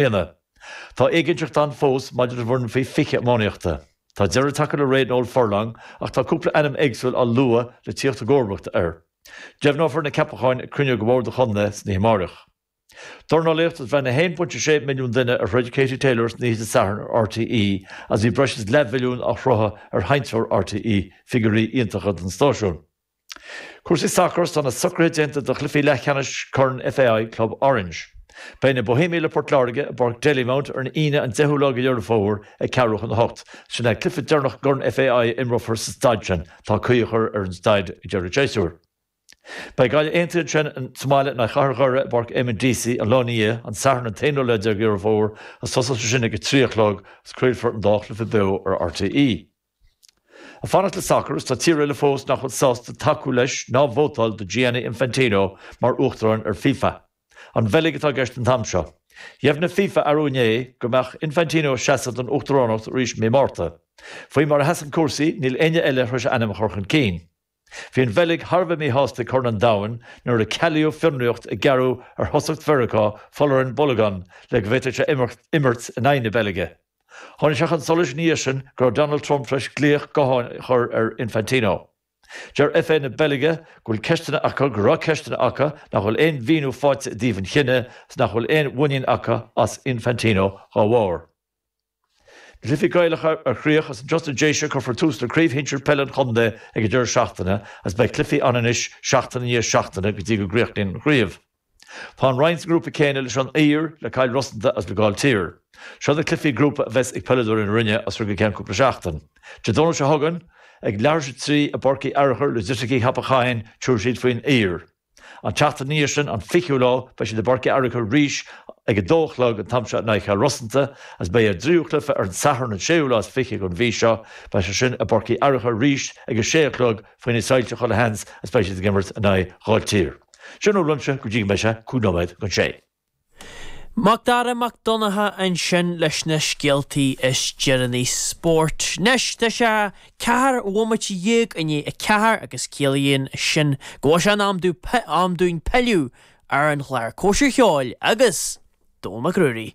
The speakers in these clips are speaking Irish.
Éanna. Tá éiginnteacht ann fós maidir don bhfoireann faoi 20 iománaíochta. Tá deireadh tagtha le ré Noel Furlong ach tá cúpla ainm éagsúil á lua le tíocht i gcomharbacht air. Deimhneofar na ceapacháin ag cruinniú de Bhord an Chontae san oíche amárach. Dornálaíocht Is bhreathnaigh 1.6 milliún duine ar throid Katie Taylor san oíche Dé Sathairn ar RTÉ agus bhí breis is leathmhilliún á shruthú ar sheinnteoir RTÉ, figiúirí iontacha don stáisiún. Cúrsaí sacair, Tá na socruithe déanta do chluichí leathcheannais Corn FAI Club Orange. Beidh na Bohemians le Port Láirge i bPáirc Dalymount ar an Aoine an 10ú lá de Dheireadh Fómhair ag ceathrú chun a hocht. Sin é an cluiche deireanach i gCorn FAI a imreofar sa staid sin. Tá caoi á chur ar an staid ag deireadh an tséasúir. Beidh Gaillimh Aontaithe ansin sa mbaile in aghaidh Chathair Dhoire i bPáirc Eamonn Deacy an lá ina dhiaidh, an Satharn an t-aonú lá déag de Dheireadh Fómhair, agus tosóidh sé sin ag a trí a chlog agus craolfar an dá chluiche beo ar RTÉ. Ag fanacht le sacar, is tá tír eile fós nach bhfuil sásta tacú leis ná vótáil do Gianni Infantino mar uachtarán ar FIFA. An Bheilg atá i gceist an t-am seo. Dheimhnigh FIFA arú inné go mbeadh Infantino ag seasamh don uachtaránacht arís i mí Márta. Faoi mar a sheasann cúrsaí, níl éinne eile tar éis ainm a chur chun cinn. Bhí an Bheilg thar a bheith míshásta ag Corn an Domhain nuair a cealaíodh fionraíocht a gearradh ar thosaí Mheiriceá Folarin Balogun le go bhféadfadh sé imirt in aghaidh na Beilge. Tháinig sé chun solais ina dhiaidh sin go raibh Donald Trump tar éis glaoch gutháin a chur ar Infantino. Deir FA na Beilge go bhfuil ceisteanna acu, go raibh ceisteanna acu, nach bhfuil aon mhíniú faighte i dtaobh an chinnidh agus nach bhfuil aon mhuinín acu as Infantino dá bharr. Cluichí Gaelacha mar chríoch Is ins na Déise cuirfear tús le Craobh Shinsir Peile an Chontae ag an deireadh seachtaine agus beidh cluichí ann anois seachtain i ndiaidh seachtaine go dtí go gcríochnaíonn an chraobh. Tá an Rinn sa ngrúpa céanna leis An Uidhir, le Cill Rosanta agus le Gaill Tír. Seo na cluichí grúpa a bheas ag peileadóirí na Rinne as seo go ceann cúpla seachtain. Dé Domhnaigh seo chugainn, ag leathuair tar éis a trí i bPáirc Uí Fhearachair Loighisticí Cheapach Choinn, tabharfaidh siad faoin Uidhir. An tseachtain ina dhiaidh sin, an fichiú lá, beidh siad i bPáirc Uí Fhearachair arís ag a dó a chlog an t-am seo in aghaidh Chill Rosanta, is beidh a dtríú cluife ar an Satharn an séú lá is fiche den mhí seo, beidh sé sin i bPáirc Uí Fhearachair arís ag a sé a chlog faoi na soilse chuile sheans is beidh siad ag imirt in aghaidh Ghaill Tír. Sin é uaimse go dtí go mbeidh sé cúig nóiméad don sé. Macdara Mac Donncha ansin leis na scéaltaí is deireanaí spóirt. Anois tá sé ceathair bhomaite dhéag i ndiaidh a ceathair agus ciallaíonn sin go bhfuil sé in am dú, am dúinn pilleadh ar an chlár Cóisir Cheoil agus Dónal Mac Ruairí.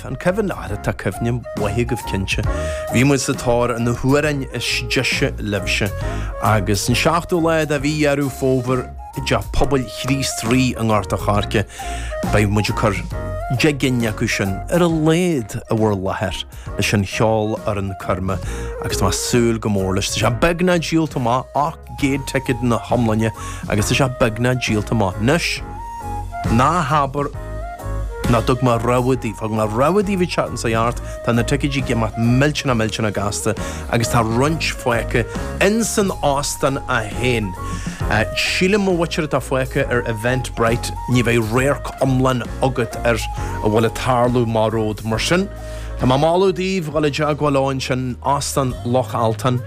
Tá an cuimhin leat, tá cuimhne mhaith agaibh cinnte. Bhí muid sa tóir ar na hamhráin is deise libhse agus an seachtú lá de mhí Dheireadh Fómhair i dTeach Pobail Chríost Rí i nGort a' Choirce beidh muid ag cur deich gcinn acu sin ar a laghad i bhur láthair leis an cheolfhoireann coirme agus tá mé ag súil go mór leis. Tá sé beagnach díolta amach ach. gcéad ticéad ina hiomláine agus tá sé beagnach díolta amach. Anois, ná habair nach dtug mé rabhadh daoibh. Thug mé rabhadh daoibh an tseachtain seo chuaigh thart. Tá na ticéidí ag imeacht millteanach millteanach gasta agus tá roinnt fágtha ins an óstán é féin. Sílim an mhuintir atá fágtha ar Eventbrite ní bheidh radharc iomlán agat ar a bhfuil ag tarlú amach romhat. Mar sin, tá mé ag moladh daoibh dhul i dteagmháil leo ansin, Óstán Loch Altan,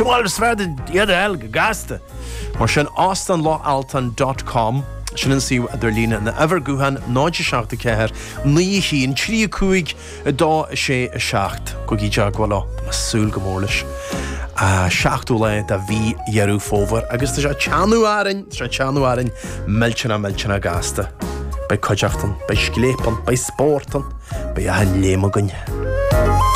más féidir ticéad a fháil go gasta. Mar sin, Óstán Loch Altan dot com, sin an suíomh idirlín nó uimhir gutháin 07 4 9 1 3 5 2 6 7 Gabhaigí i dteagmháil leo. Tá mé súil go mór leis. 7ú lá de mhí Dheireadh Fómhair agus tá sé ag teannadh orainn, tá sé ag teannadh orainn, millteanach millteanach gasta. Beidh cuideachta ann, beidh scléip ann, beidh spórt ann, beidh achan léim againn.